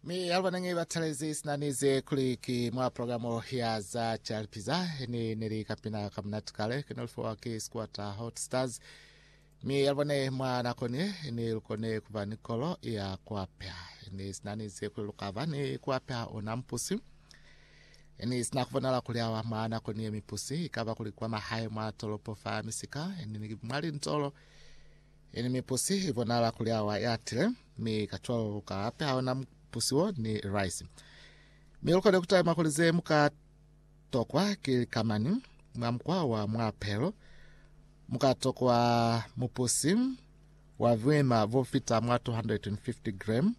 mi yalwanenge batalezi sinanize kuliki mwa programu ya za chalipiza ni neli kapina kamunati kale kinolifowa ki squatter hot stars mi yalwane mwa nakonye ni lukone kuba ni kolo ya kuapya ni sinanize kuli lukava ni kuapya ona mpusi ni sina kubonala kuli awa mwa nakonye mipusi ikaba kuli kwa mahae mwa tolopo fa misika ni mwali ntolo Ini mipusi i bonala kuli awa ya tile, mi ka cwalo lu ka apeha ona mupusi wo ni rice. Mi lu kone ku talima kuli ze mu ka tokwa ki likamani. Mwa mukwa wa mwa pehelo, mu ka tokwa mupusi wa buima bo fita mwa 250 gram,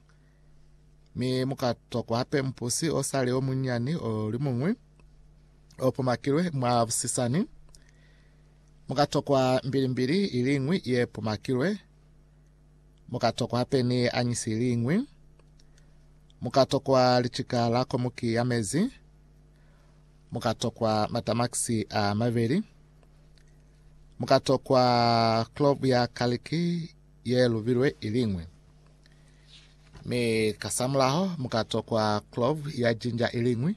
mi mu ka tokwa hape mupusi o sali o munyani o limuñwi o pomakilwe mwa busisani. Mu ka tokwa mbilimbili i liñwi ye pumakilwe, mu ka tokwa hape ni anyisi i liñwi, mu ka tokwa licika la komuki ya mezi, mu ka tokwa matamakisi a mabeli, mu ka tokwa klovu ya kaliki ye lubilwe i liñwi, mi kasamulaho mu ka tokwa klovu ya jinja i liñwi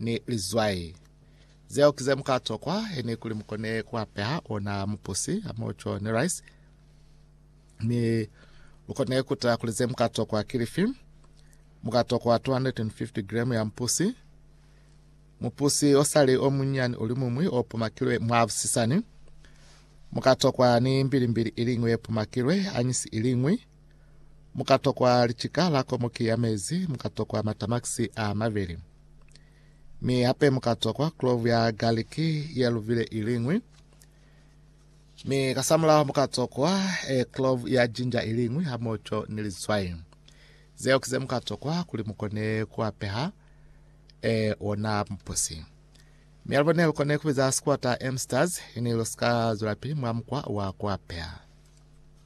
ni lizwai. Zeo ki ze mu ka tokwa eni kuli mu kone ku apeha ona mupusi ha moco ni rice. Mi lu kone ku tala kuli ze mu ka tokwa ki lifi. Mu ka tokwa 250 gremu ya mupusi, mupusi o sali o munyani o limumwi o pumakilwe mwa busisani. Mu ka tokwa ni mbilimbili iliñwi ye pumakilwe, anyisi iliñwi. Mu ka tokwa licika la komoki ya mezi, mu ka tokwa matamakisi a mabeli. Mi hape mu ka tokwa klovu ya galiki ye luvile iliñwi, mi kasamulaho mu ka tokwa e klovu ya jinja iliñwi hamoco ni litswai. Zeo ki ze mu ka tokwa kuli mu kone ku apeha e ona mupusi. Mi alubo ne lu kone ku biza sikwata Amsters, ini lu si ka zwelapili mwa mukwa wa ku apeha.